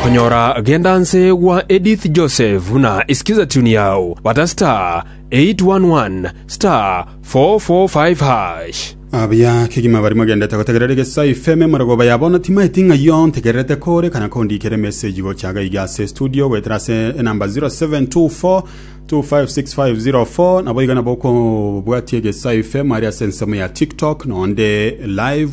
Konyora genda nse gwa Edith Joseph na isikiza tune yao bata star 811 star 445 hash. Abuya kegima bari mogendete gotegerera egesa FM marogoba ya bono timaeti ng'aiyo ntegererete kore kana kondikere message gocha gaiga ase studio goetera ase enamba 0724256504 nabo iga nabo okobwatia egesa FM ari ase ensemo ya TikTok nonde live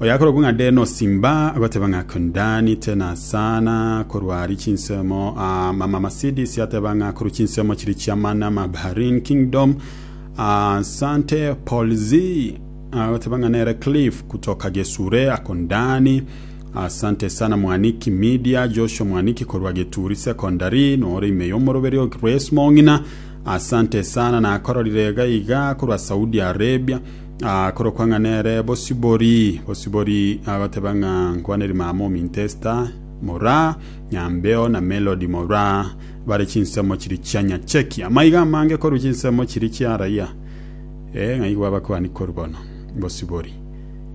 Oyakorokwa ng'a Denosi mba agoteba ng'a Kundani te na sana korwa ari chinsemo a mama Masidis ateba ng'a korwa chinsemo chiri chia mana ma Baharin kingdom a Sante Polzi agoteba ng'a nere Cliff kutoka Gesure akundani Asante sana mwaniki media Joshua mwaniki korwa Geturi secondary nore ime y'omoroberi o Grace Mong'ina Asante sana nakororire iga iga korwa Saudi Arabia Akorokwa ng'a nere Bosibori. Bosibori agoteba ng'a nkwaneri mama ominto Esta, mora nyambeo, na Melodi, mora bare chinsemo chiria chia nyacheki. Amaiga amange korwa chinsemo chiria chia raia, ee, ng'a igwa abakuani korwa bono. Bosibori.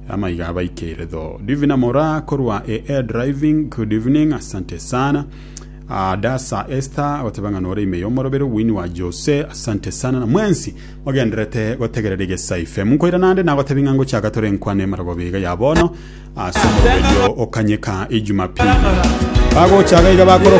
Amaiga abaikeire tho. Divina mora korwa e air driving, good evening, asante sana. Adasa Esther agoteba ng'a nore ime y'omorobero Winnie wa Jose, asante sana na mwensi Mogendererete gotegerera egesa ife mokoira naende nagotebia ng'a ngochaka tore nkwane emerogobe iga ya bono ase omoroberio o Kanyeka Ijumapili. Bagochaka iga bakoroka